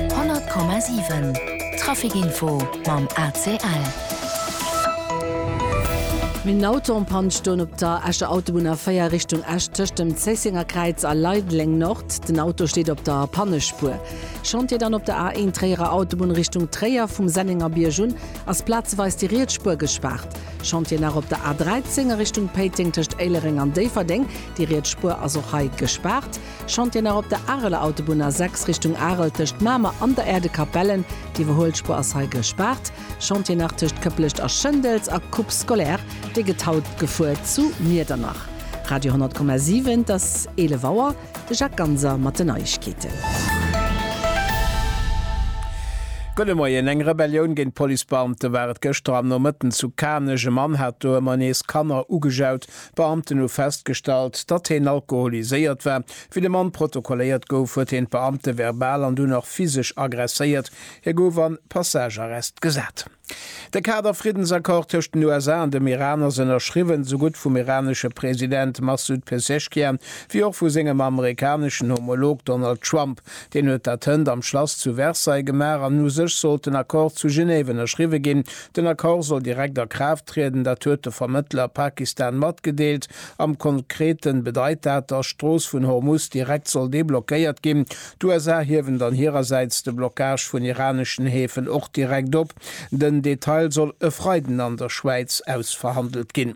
100,7 Traficinfo mam ACL. Min Auto en Panne stoen op der Escher Autobunn A4 Richtung Esch tëscht dem Zéisséngerkräiz a Leideleng Nord. Den Auto steet op der Pannespuer. Chantier dann op der A1 Tréierer Autobunn Richtung Tréier, vum Sennengerbierg un ass plazeweis déi riets Spuer gespaart. Chantier nach op der A13 a Richtung Péiteng tëscht Éilereng an Déifferdeng, déi riets Spuer ass och hei gespaart. Chantier nach op der Areler Autobunn A6 Richtung Arel tëscht Mamer an der Erdekapellen. D'Iwwerhuelspuer ass hei gespaart. Chantier nach tëscht Këpplecht a Schëndels a Coupe scolaire, dee gëtt haut gefuer zu Miedernach. Radio 100,7 Et ass 11 Auer, de Jacques Ganser mat den Neiegkeeten. Gudde Moien, Eng Rebellioun géint d'Policebeamte war et gëschter am Nomëtten zu Kanech. E Mann hat do ëmmer nees Kanner ugejaut, D'Beamten hu festgestallt, datt heen alkoholiséiert war. Wéi de Mann protokolléiert gouf, huet heen d'Beamte verbal an dunn och physesch aggresséiert. Hie gouf an Passagearrest gesat. De Kader-Friddensaccord tëscht den USA an dem Iran ass ënnerschriwwen, sou gutt vum iranesche President Massoud Pezeshkian, wéi och vu sengem amerikaneschen Homolog Donald Trump. Deen huet dat hënt am Schlass zu Versailles gemaach an u sech sollt den Accord zu Genève ënnerschriwwe ginn. Den Accord soll direkt a Kraaft trieden, dat huet de Vermëttler Pakistan matgedeelt. Am Konkrete bedeit dat, datt d'Strooss vun Hormuz direkt soll deblockéiert ginn. D'USA hiewen dann hirersäits de Blockage vun iraneschen Häfen och direkt op. Den Detail soll e Freiden an der Schwäiz ausverhandelt ginn.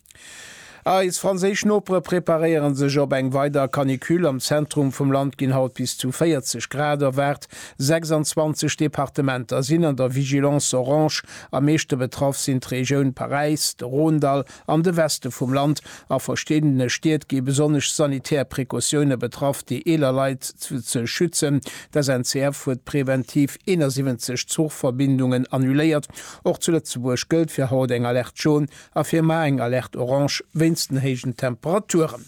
Eis franséisch Nopere preparéiere sech op eng weider Canicule. Am Zentrum vum Land ginn haut bis zu 40 Grad erwaart. 26 Departementer sinn an der Vigilance orange. Am meeschte betraff sinn d'Regioun Paräis, de Rhône-Dall an de Weste vum Land. A verschiddene Stied gi besonnesch sanitär Precautioune betraff, déi eeler Leit ze schützen. D'SNCF huet preventiv 71 Zuchverbindungen annuléiert. Och zu Lëtzebuerg gëllt fir haut eng Alerte Jaune A Firma eng Alerte Orange wéinst den héijen Temperaturen.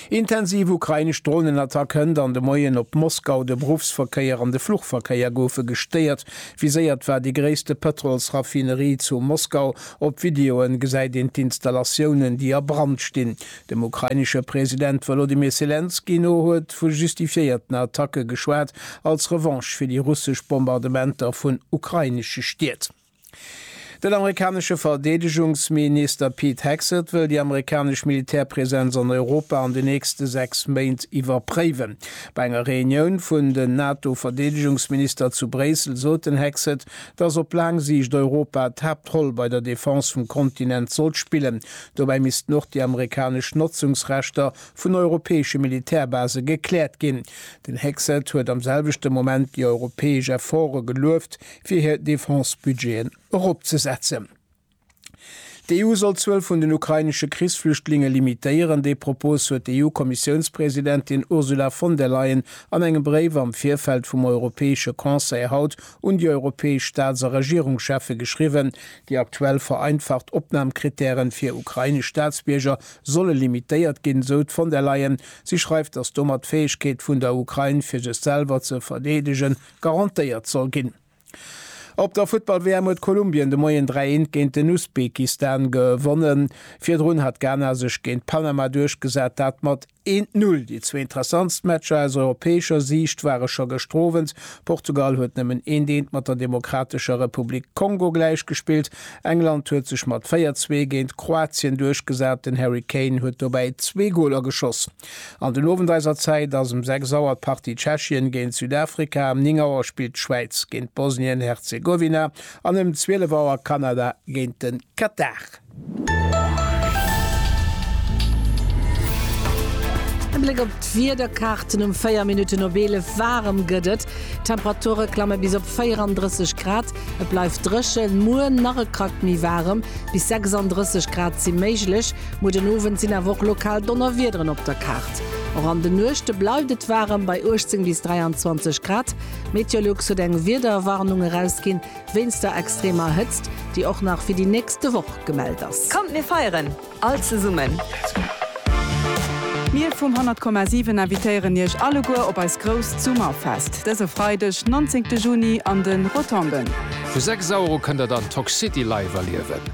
Intensiv ukrainesch Dronenattack hënt an de Moien op Moskau, de Beruffsverkéier an de Fluchverkéier goufe gestéiert. Viséiert war déi gréisste Pëtrolsraffinerie zu Moskau. Op Videoen gesäit een d'Installatiounen, déi a Brand stinn. Dem ukrainesche President Wolodymyr Selenskyj no huet vu justifiéierten Attacke geschwat, als Revanche fir déi russesch Bombardementer vun ukrainesche Stied. Den amerikanesche Verdeedegungsmi-nister Pete Hegseth wëll déi amerikanesch Militärpresenz an Europa an den nächste sechs Méint iwwerpréiwen. Bei enger Reunioun vun den NATO-Verdeedegungsminister zu Bréissel sot den Hegseth, datt op laang Siicht Europa d'Haaptroll bei der Defense vum Kontinent sollt spillen. Dobäi missten och déi amerikanesch Notzungsrechter vun europäesche Militärbase gekläert ginn. Den Hegseth huet am selwechte Moment déi europäesch Efforte gelueft, fir hir Defense-Budgeten eropzesetzen. D'EU soll d'Zuel vun den ukrainesche Krichsflüchtlinge limitéieren. Dee Propos huet d'EU-Kommissiounspresidentin Ursula von der Leyen an engem Bréif am Virfeld vum Europäesche Conseil haut un déi europäesch Staats a Regierungscheffe geschriwwen. Déi aktuell vereinfacht Opnamkrittäre fir ukrainesch Staatsbierger solle limitéiert ginn, esou d'Von der Leyen. Si schreift, datt domat d'Fäegkeet vun der Ukrain, fir sech selwer ze verdeedegen, garantéiert soll ginn. Op der Futtball-WM huet Kolumbien de Moien 3, 1 géint den Usbekistan gewonnen. Virdrun hat Ghana sech géint Panama duerchgesat, dat mat 1, 0. Déi zwee interessantst Matcher aus europäescher Siicht ware scho gëschter Owend. Portugal huet nëmmen eent, eent mat der Demokratescher Republik Kongo gläichgespillt. England huet sech mat 4, 2 géint Kroatien duerchgesat, den Harry Kane huet dobäi zwee Goler geschoss. An den Owend eiser Zäit ass um 6 Auer d'Partie Tschechien géint Südafrika, ëm 9 Auer spillt d'Schwäiz géint Bosnien-Herzegowina an ëm 12 Auer Kanada géint de Katar. E Bléck op d'Wiederkaarten um 4 Minutten op 11. Waarem gëtt et, d'Temperature klamme bis op 34 Grad. Et bleift dréchen, muer nach e Krack méi waarem, bis 36 Grad si méiglech. Muer den Owend sinn awer och lokal Donnerwiederen op der Kaart. Och an de Nuechte bleift et waarem bei 18 bis 23 Grad. Meteolux huet eng Wiederwarnung erausginn wéinst der extremer Hëtzt, déi och nach fir déi nächste Woch gemellt ass. Kommt mir feieren all zesummen! Mir vum 100,7 invitéieren iech alleguer op eis grousst Summerfest dëse Freideg 19 Juni an de Rotonden. Vu 6 Auer u kënnt der dann d'Toxicity live erliewen.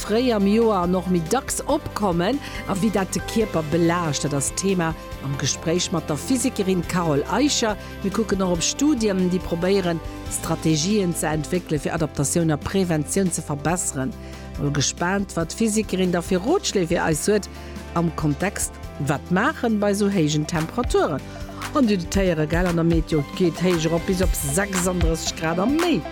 Fréi am Joer an och méi dacks opkommen a wéi dat de Kierper belaascht, dat ass Thema am Gespréich mat der Physikerin Carole Eicher. Mir kucken och op Studien, déi probéieren, Strategien ze entwéckelen, fir Adaptatioun a Preventioun ze verbesseren. Mol gespaant, wat d'Physikerin da fir Rotschléi fir eis huet am Kontext Wat maachen bei esou héijen Temperaturen? An Dir dotéieren, gell? An der Meteo geet d'Héicht erop bis op 36 Grad a méi.